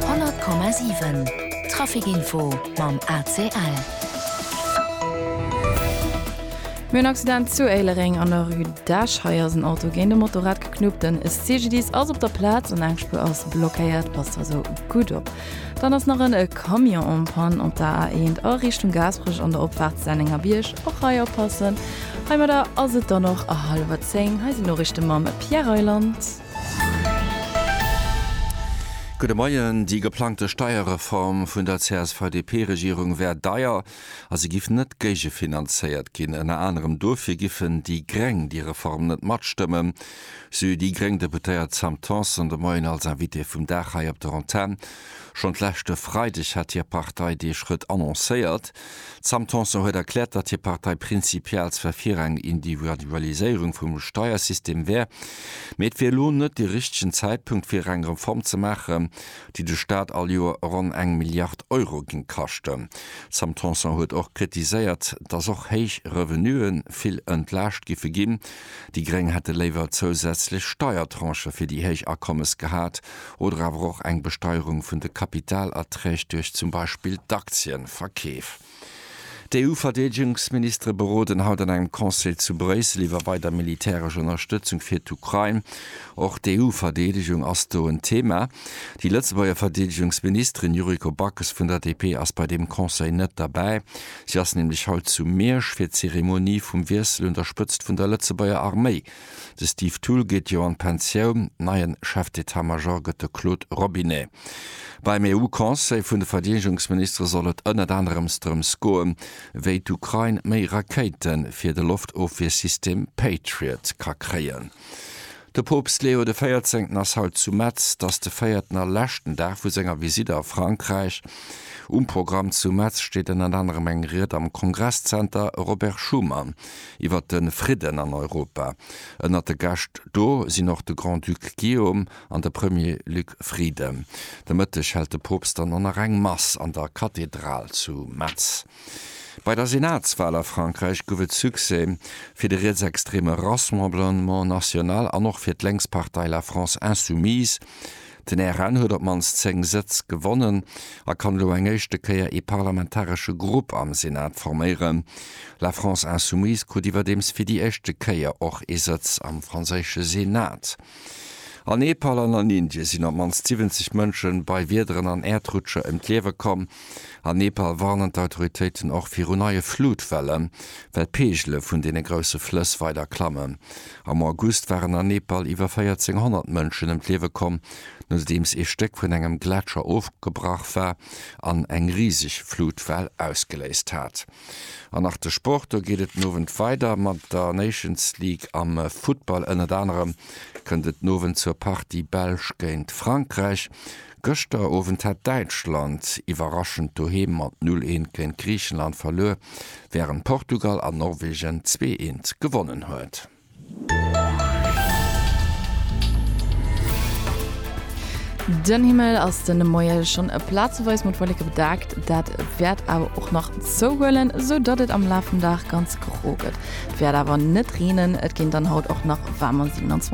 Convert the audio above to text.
100,7 Trafic Info mam ACL. Mir hunn Accident zu Éilereng an der Rue d'Esch. Hei ass en Auto géint e Motorrad geknuppt. Den CGDIS ass op der Plaz an eng Spuer ass blockéiert. Passt also gutt op. Dann ass nach en Camion en panne op der A1 a Richtung Gaasperech an der Opfaart Sennengerbierg. Och hei oppassen. Heimadder ass et dann och halwer zéng. Hei sinn d'Noriichte mam Pierre Reyland. Gudde Moien. Déi geplangte Steierreform vun der CSV-DP-Regierung wär deier a se giff net géigefinanzéiert ginn. Ënner anerem dofir giffen déi Gréng déi Reform net matstëmmen, sou déi gréng Deputéiert Sam Tanson de Moien als Invitée vum Dag hei op der Antenn. Schonn d'leschte Freideg hat hir Partei dee Schrëtt annoncéiert. D'Sam Tanson huet erkläert, datt hir Partei prinzipiell zwar fir eng Individualiséierung vum Steiersystem wär, mee et wier elo net de richtegen Zäitpunkt fir eng Reform ze maachen, déi de Staat all Joer ronn eng Milliard Euro géing kaschten. D'Sam Tanson huet och kritiséiert, datt och héich Revenuë vill entlaascht giffe ginn. Déi Gréng hätte léiwer zousätzlech Steiertranchë fir déi héich Akommes gehat, oder awer och eng Besteierung vun de Kapitalerträg duerch zum Beispill d'Aktieverkeef. D'EU-Verdeedegungsministere beroden haut an engem Conseil zu Bréissel iwwer weider militäresch Ënnerstëtzung fir d'Ukrain. Och d'EU-Verdeedegung ass do en Thema. Déi Lëtzebuerger Verdeedegungsministerin Yuriko Backes vun der DP ass bei deem Conseil net derbäi. Si ass nämlech haut zu Miersch fir d'Zeremonie vum Wiessel un der Spëtzt vun der Lëtzebuerger Arméi De Steve Thull geet jo an d'Pensioun, neien Chef d'Etat-Major gëtt de Claude Robinet. Beim EU-Conseil vun de Verdeedegungsministere soll et ënnert anerem drëms goen, wéi d'Ukrain méi Rakéite fir de Loftofwiersystem Patriot ka kréien. De Poopst Leo de Véierzéngten ass haut zu Metz. Et ass de véierten a leschten Dag vu senger Visitt a Frankräich. Um Programm zu Metz steet ënnert anerem eng Ried am Kongresszenter Robert Schuman. iwwer de Fridden an Europa. Ënnert de Gäscht do sinn och de Grand-Duc Guillaume an de Premier Luc Frieden. De Mëtteg hält de Poopst dann och nach eng Mass an der Kathedral zu Metz. Bei der Senatswal a Frankräich gouf et Succès fir de rietsextreme Rassemblement National an och fir d'Lénkspartei La France Insoumise. Den RN huet op d'mannst 10 Sëtz gewonnen a kann elo eng éischte Kéier ee parlamentaresche Grupp am Senat forméieren. La France Insoumise krut iwwerdeems fir déi éischte Kéier och ee Sëtz am franséische Senat. A Nepal an an Indie sinn op d'mannst 70 Mënsche bei Wiederen an Äerdrutscher ëm d'Liewe komm. An Nepal warnen d'Autoritéiten och viru neie Flutwellen, well d'Peegele vun deene grousse Flëss weider klammen. Am August waren an Nepal iwwer 1400 Mënschen ëm d'Liewe komm, nodeems ee Stéck vun engem Gletscher ofgebrach war an eng riseg Flutwell ausgeléist hat. An nach de Sport, Do geet et den Owend weider mat der Nations League am Futtball. Ënnert anerem kënnt et den Owend zur Partie Belsch géint Frankräich. Gëschter Owend hat Däitschland iwwerraschend doheem mat 0 Eent géint Griichenland verluer, wärend Portugal an Norwegen 2 Eent gewonnen huet. Den Himmel ass de Moie schonn plazeweis mat Wolleke bedaackt, dat wäert awer och nach zouhuelen, sou datt et am Laf vum Dag ganz gro gëtt. Et wäert awer net reenen, et ginn dann haut och nach waarmer 27